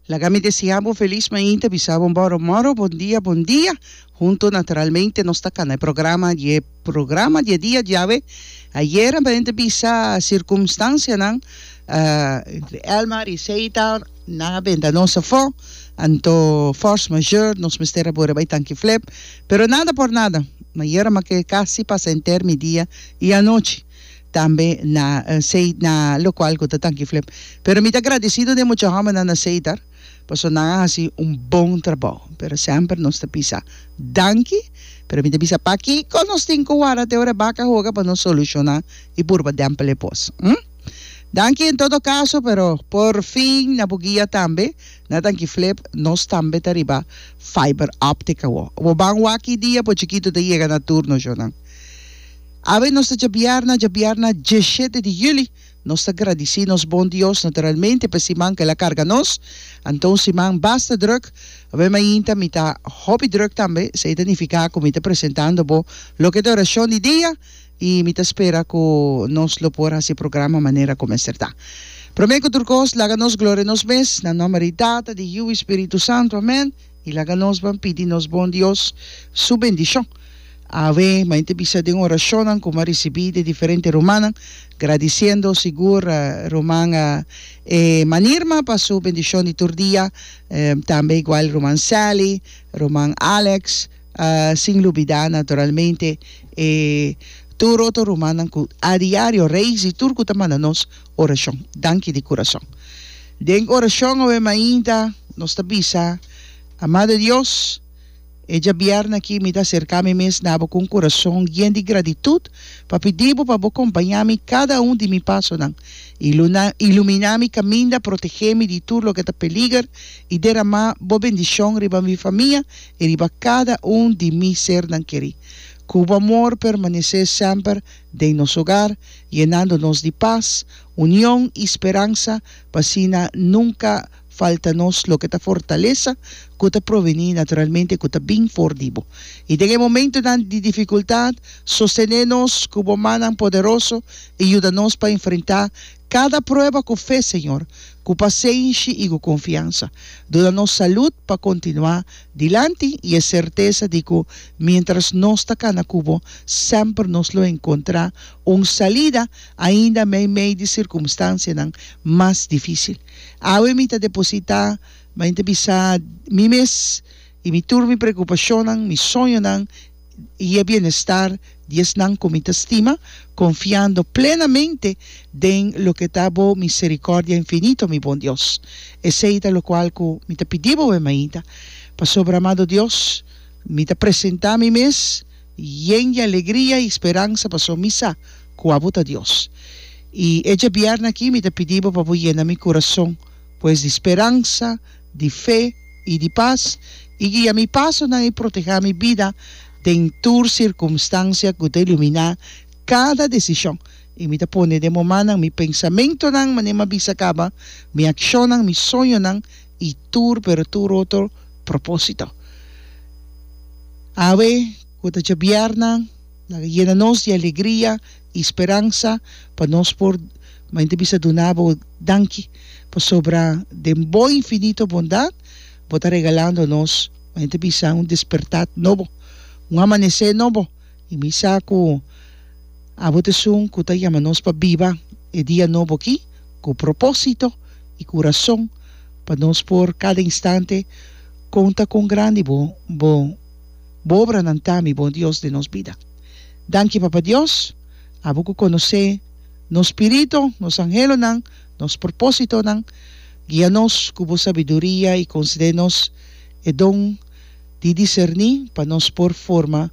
Laga mi deseá bo felis mainta bisa bo moro moro bon dia bon dia hunto naturalmente nos ta kana e programa di e programa di e dia diawe ayera mi ta bisa circumstancianan entre Elmar y Seitar nan a benda nos afó anto force majeure nos mester a bura bay tanki flep pero nada por nada ayera mi a ke casi pasa henter mi dia y anochi tambe na Seit na lokual ku ta tanki flep pero mi ta gradisido den mucha hòmbernan na Seitar paso nan a hasi un bon trabou pero semper nos ta bisa danki pero mi ta bisa pakiko nos tin ku wara te ora baka hoga pa nos solushona i purba dèmpel e pos hm danki en todo kaso pero por fin na bo guia tambe na tanki flep nos tambe ta riba fiber optic awo bo ban wak i dia bo chikitu ta yega na tur nos yonan. Awe nos ta djabiarna, djabiarna diesshete di juli. Nos ta gradisí nos bon Dios naturalmente pa e siman ku el a karga nos. Anto un siman basta drùk. Awe mainta mi ta hopi drùk tambe, esei ta nifiká ku mi ta presentando bo loke ta e orashon di dia i mi ta spera ku nos lo por hasi e programa manera ku mester ta. Promé ku tur kos, laga nos gloria nos mes, na nòmber di Tata, di Yiu i Spiritu Santu. Amèn. I laga nos ban pidi nos Bon Dios su bendishon. Awe, main ta bisa den orashonnan ku m'a risibí di diferente rumannan, gradisiendo sigur ruman Emma Nirma pa su bendishon di tur dia, tambe igual ruman Sally, ruman Alex, sin lubidá naturalmente e tur otro rumannan ku a diario rei si tur ku ta manda nos orashon. Danki di kurason. Den orashon awe mainta nos ta bisa, Amado Dios, e djabièrna aki mi ta aserká mi mes na Bo ku un kurason yen di gratitut pa pidi Bo pa Bo kompañá mi kada un di mi pasonan, iluminá mi kaminda, protegé mi di tur loke ta peliger i deramá Bo bendishon riba mi famia i riba kada un di mi sernan kerí. Ku Bo amor permanesé semper. den nos hogar, yenando nos di pas, union i speransa, pa asina nunka falta nos loke ta fortalesa ku ta provení naturalmente ku ta bin for di bo. I den e momentunan di difikultat, sostené nos ku bo mannan poderoso i yuda nos pa enfrentá kada prueba ku fe, Señor, ku pasenshi i ku konfiansa. Duna nos salud pa kontinuá Dilanti i e sertesa di ku miéntras nos ta kana ku bo, semper nos lo enkontrá un salida ainda meimei di sirkumstansianan mas difísil. Awe mi ta depositá, mañana ta bisa, mi mes i mi tur mi preokupashonnan, mi soñonan, y e bienestar di esnan cu mi ta stima, confiando plenamente den loke ta bo misericordia infinito, mi bon Dios. Esey ta locual cu mi ta pidi bo, e mainta. Pasobra, amado Dios, mi ta presenta mi mes yen di alegria y speransa, pasobra mi sa cu abo ta Dios. Y e djabièrna aki mi ta pidi bo pa bo yena mi curazon, pues, di speransa, di fe i di pas, i guia mi pasonan i protehá mi bida den tur sirkumstansia ku ta iluminá kada desishon. I mi ta pone den bo mannan mi pensamentunan, manera m'a bisa kaba, mi akshonnan, mi soñonan i tur, pero tur otro propósito. Awe ku ta djabièrna, laga yena nos di alegria. y speransa pa nos por mainta bisa duna bo danki pasobra den bo infinito bondad bo ta regalando nos mainta bisa un despertad nobo un amanece nobo y mi sa cu abo ta esun cu ta yama nos pa biba e dia nobo aki cu proposito y cu rason pa nos por cada instante conta con grandi bo bo bo obranan ta mi bon Dios den nos bida. Danki Papa Dios, abo ku konosé no spirito, nos anhelonan, nos propósitonan, guia nos ku bo sabiduria i konsede nos e don di diserní pa nos por forma